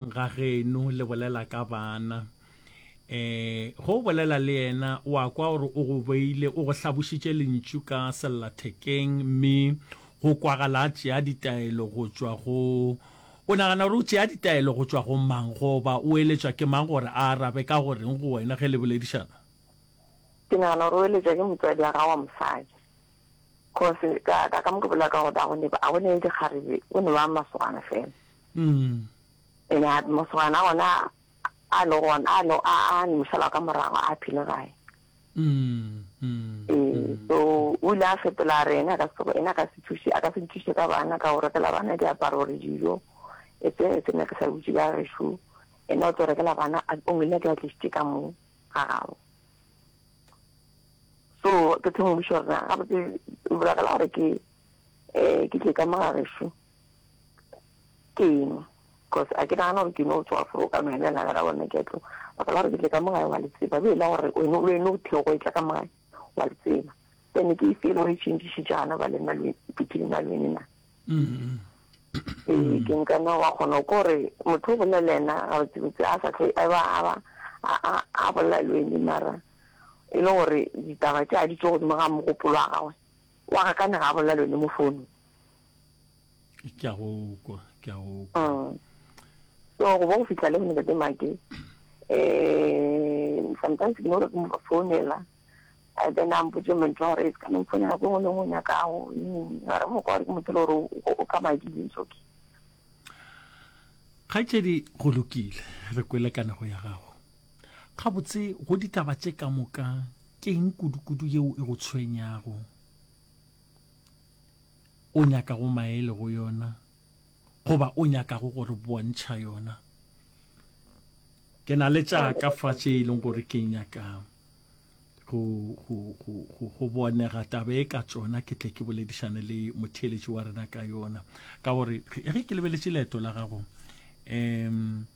ga geno le bolela ka bana um go bolela le yena o a kwa gore o go beile o go hlabošitše lentšu ka sellathekeng mme go kwagala a tšea ditaelo go tšwa go o nagana gore o tšea ditaelo go tšwa go mang goba o eletšwa ke mang gore a arabe ka goreng go wena ge le boledišana ke nagana gore o eletšwa ke motswadi wa gago wa mosadi Kgosi, ka, ka, ka mo ke bolela ka gore a go ne, a go ne le dikgarebe, go ne ba masogana fela. Mm. Ene a masogana ona a le gona, a le, a, a le mošala ka morago, a phile gae. Mm, mm, Ee, mm. so, o ile a fetola a re ene a ka se, ene a ka se thuše, a ka se nthuše ka bana, ka go rekela bana diaparo gore dijo, e tse, e tse nna ke sa butše ka gešo, ene o tlo rekela bana, a- o ngwile ke a tlišitše ka mo, ga gabo. so ke thoma go buša gore gabotse o bolagala gore ke um ke tle ka mogagešu ke eng because a ke nagana gore ke no tswa fo ka mene la gara bona ke tlo ba kala gore ke tle ka mogae wa letseba be la gore wena o ene o tle go etla ka mogae wa letseba then ke e feel gore e change jana ba le malwetse between malwene na Ee, ke nkana wa kgona ko re motho o bolela yena gabotsebotse a sa tlhe a ba a ba a bolela le wene mara e le gore ditaba tše a di tso godimo ga mogopolo wa gagwe wa ga kane ga a bolela le wene mo founung ke a go kwa ke a go kwa mm. so go bo go fitlha le go ntate make eh sometimes ke no re ke mo founela and then a mpotse mentle gore it's coming for nako engwe lengwe o nyakago are mo kwa gore ke motho le gore o ka madile it's okay kgaetšedi go lokile re kwele kanego ya gago gabotse go ditaba tše ka moka ke eng kudukudu yeo e go tshwenyago o nyaka go maele go yona goba o nyakago go re bontšha yona. Ke na le tša ka fa tše e leng gore ke nyaka go, go, go, go, go bonega taba e ka tsona ke tle ke boledišane le motheeletši wa rena ka yona ka gore ge ke lebeletše leeto la gago um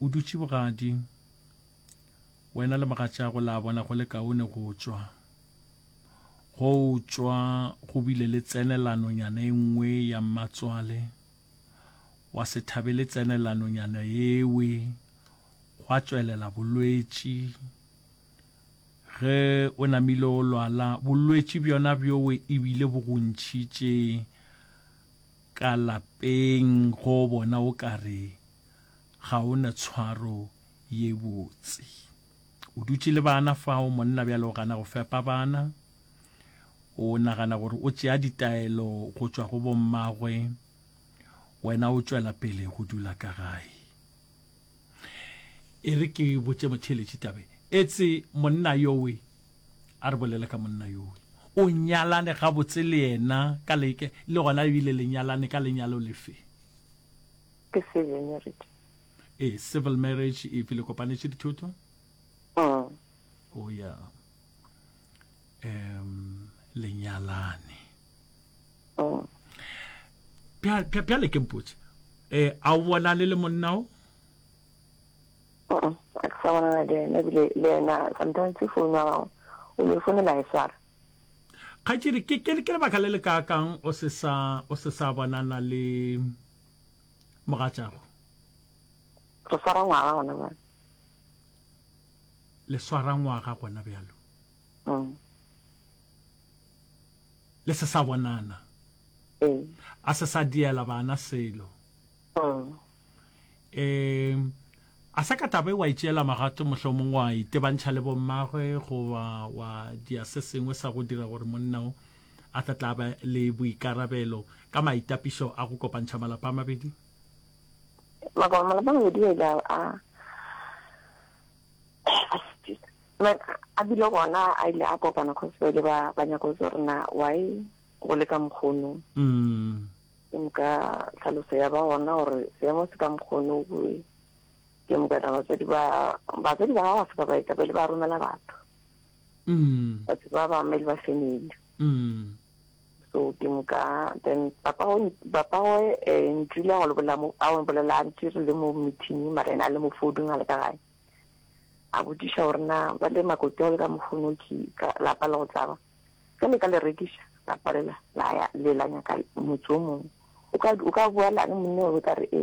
o dutše bogadi wena le mogatšago la bona go le kaone go tswa Go tšwa go bile le tsenelanonyana e nngwe ya mmatswale wa se thabele tsenelanonyana yewe, gwa tšwelela bolwetši. Ge o namile o lwala, bolwetši bjona bjowe e bile bo go ntšhitše ka lapeng go bona o ka re ga o na tshwaro ye botse. O dutše le bana fao, monna bjale o gana go fepa bana. O nagana gore o tšea ditaelo go tšwa go bommagwe, wena o tšwela pele go dula ka gae. E re ke botše motheeletši tabe, etse monna yowe a re bolele ka monna yowe. O nyalane gabotse le yena ka leke, le gona ebile le nyalane ka lenyalo lefe? Ke Sevenerity. e civil marriage if le kopanetše dithoto mm. o oh, ya um lenyalane mm. bjale ke mpotse eh a o bonane le monna o a ke sa bonana le ena ebile le ena sometimes ke founu wa gago o ne founela e swara kgatsedi ke lebaka le le kaakang o se sa bonana le Mogatšago. Re swara ngwaga gona bjalo. Le swara ngwaga gona bjalo. Mm. Le se sa bonana. Ee. A se sa diela bana selo. Mm. Eh a sa ka tabe wa itšeela magato mohlomong wa itebantšha le bommagwe goba wa dia se sengwe sa go dira gore monna o a tla tla ba le boikarabelo ka maitapišo a go kopantšha malapa a mabedi? Maka malapa a mabedi a ile a a bile gona a ile a kopana cause ba ile ba ba nyako tse gore na why go le ka mokgono mm. ke moka tlhaloso ya ba gona gore seemo se ka mokgono boe ke moka tla batswadi ba batswadi ba gago se ka baetapele ba romela batho batho ba ba mele ba family so ke moka then papa go papa go eh ntile go lebola mo a go bolela ntse re le mo meeting mara ena le mo fodung a le ka gae a botsisha gore na ba le makoti go le ka mofono ke ka lapa le go tsaba ka le ka le rekisha la palela la ya le la nyaka motse o mongwe o ka o ka bua la ne monna o ka re e